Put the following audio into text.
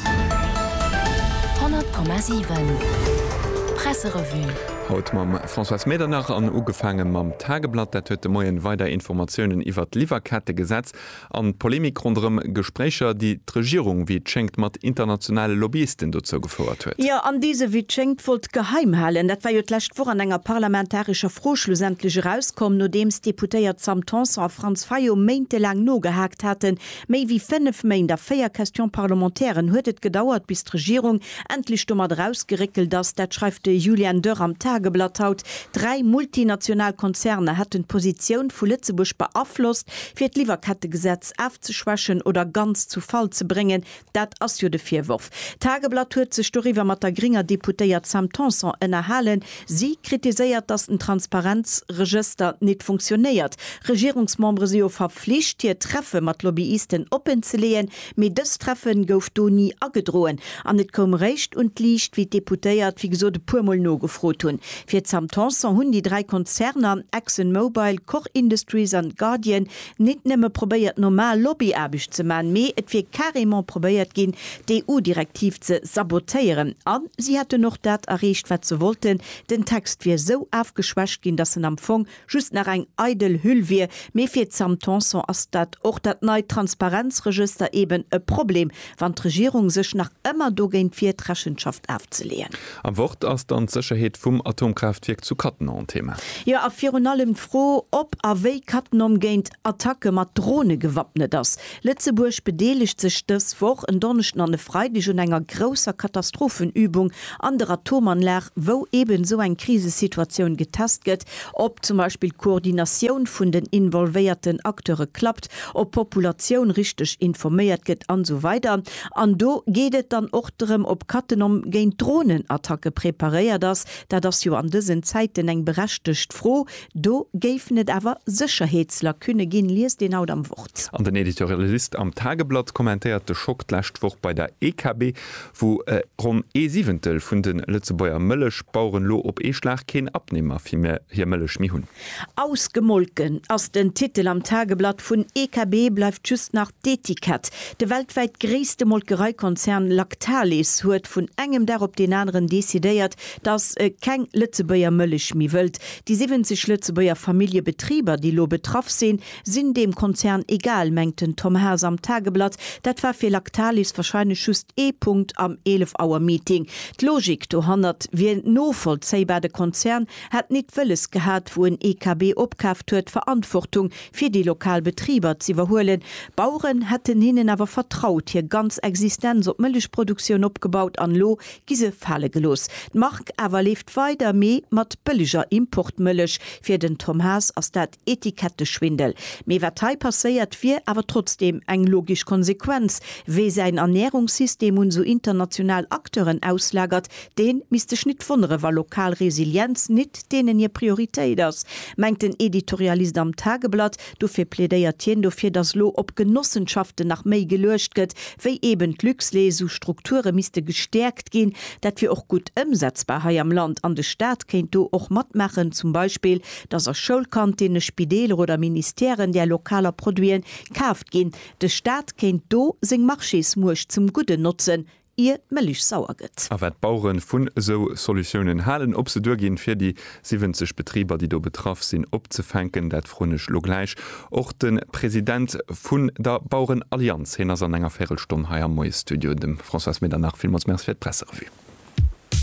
100,7 Presserevue. Haut mam Françoise Medernach an ugefaange mam Tageblatt. Dat huet de Moien weider Informatiounen iwwert d'Liwwerkettegesetz an d'Polemik ronderëm Gespréicher, déi d'Regierung, wéi et schéngt, mat internationale Lobbyisten dozou gefouert huet. Jo, an déi se, wéi et schéngt, wollt geheim halen. Dat war jo d'lescht Woch an enger parlamentarescher Fro schlussendlech erauskomm, nodeems d'Deputéiert Sam Tanson a Franz Fayot méintelaang nogehaakt haten, Méi wéi fénnef Méint a véier Question-parlementairen huet et gedauert, bis d'Regierung endlech domat erausgeréckelt ass, dat schreift de Julian Dörr am Tageblatt haut, dräi multinational Konzerner hätten d'Positioun vu Lëtzebuerg beaflosst, fir d'Liwwerkettegesetz afzeschwächen oder ganz zu Fall ze bréngen. Dat ass jo de Virworf. D'Tageblatt huet sech doriwwer mat der grénger Deputéiert Sam Tanson ënnerhalen. Si kritiséiert, datt den Transparenzregëster nit funktionéiert. Regierungsmembere si jo verflicht, hir Treffe mat Lobbyisten oppenzeleeën, mee dës Treffe gouf do ni agedroen an et koum eréischt un d'Liicht, wéi d'Deputéiert, wéi gesot, e puermol nogefrot hunn. Fir d'Sam Tanson hunn déi dräi Konzerner, Exxon Mobile, Koch Industries an Guardian, nit nëmme probéiert normal Lobbyaarbecht ze man, mee et wier carrément probéiert gin d'EU-Direktiv ze sabotéieren, an si hätten och dat erreecht wat se wollten, den Text wier sou afgeschwächt gin, dass en am Fong just nach eng eidel Hüll wier. Mee fir d'Sam Tanson ass dat och dat neit Transparenzregëster eben e Problem, wann d'Regierung sech nach ëmmer dogéint wiert, Rechenschaft afzeleeën. Am Wort ass dann d'Sécherheet vum Atomkraaftwierk zu Cattenom Thema. Jo, a virun allem d'Fro, ob a wéi Cattenom géint Attacke mat Drone gewappnet ass. Lëtzebuerg bedeelegt sech dës Woch, en Donneschden an e Freideg, un enger grousser Katastrophenübung an der Atomanlag, wou eben esou eng Krisesituatioun getest gëtt, Ob zum Beispill d'Koordinatioun vun den involvéierten Acteure klappt, ob d'Populatioun richteg informéiert gëtt an esou weider An do geet et dann och drëm, ob Cattenom géint Dronenattacke preparéiert ass. Dat ass jo an dësen Zäiten eng berechtegt Fro. Do géifen et awer Sécherheetslacunne ginn, liest een haut am Wort. An den Editorialist am Tageblatt kommentéiert de Schock d'lescht Woch bei der EKB, Wou ronn ee Siwentel vun de Lëtzebuerger Mëllechbaueren elo op ee Schlag keen Abnehmer fir hir Mëllech méi hunn. Ausgemolken ass den Titel am Tageblatt vun EKB, bleift just nach d'Etikett. De weltwäit gréisste Molkereikonzern Lactalis huet vun engem Dag op deen aneren decidéiert, datt e keng Lëtzebuerger Mëllech méi wëllt. Déi 70 Lëtzebuerger Familljebetriber, déi elo betraff sinn, Sinn deem Konzern egal, mengt den Tom Haas am Tageblatt. Dat war fir Lactalis wahrscheinlech just ee Punkt am 11 Auer Meeting. D'Logik dohannert wier novollzéibar, de Konzern hätt nit wëlles gehat, wou en EKB opkaaft huet, Verantwortung fir déi lokal Betriber z'iwwerhuelen. D'Baueren hätten hinnen awer vertraut, hir ganz Existenz op Mëllechproduktioun opgebaut an elo gi se fale gelooss. D'Mark awer leeft weider, mee mat bëlleger Importmëllech. Fir den Tom Haas ass dat. Etiketteschwindel. Mee wat hei passéiert, wier awer trotzdeem eng logisch Konsequenz, Wee säin Ernährungssystem un esou international Acteuren auslagert, deen misst sech nit wonnere wa lokal Resilienz nit deenen hir Prioritéit ass, mengt den Editorialist am Tageblatt. Dofir plädéiert hien dofir, datt elo op Genossenschaften nach méi geluecht gëtt wéi eben d'Luxlait. Esou Strukture misste gestäerkt ginn, dat wier och gutt ëmsetzbar hei am Land an de Staat kéint do och matmaachen, zum Beispill dass a Schoulkantinne, Spideeler oder Ministèren där lokaler Produiten kaaft ginn, de Staat kéint do seng Marchésmuecht zum Gudden notzen, ier d'Mëllech sauer gëtt. A wat d'Bauere vun esou Solutiounen halen, ob se duerginn, fir déi 70 Betriber, déi do betraff sinn, opzefänken, dat froen ech elo gläich och de President vun der Bauerenallianz. Hien ass an enger Véirelstonn hei am Moiesstudio. Dem Françoise Medernach villmools Merci fir d'Presserevue.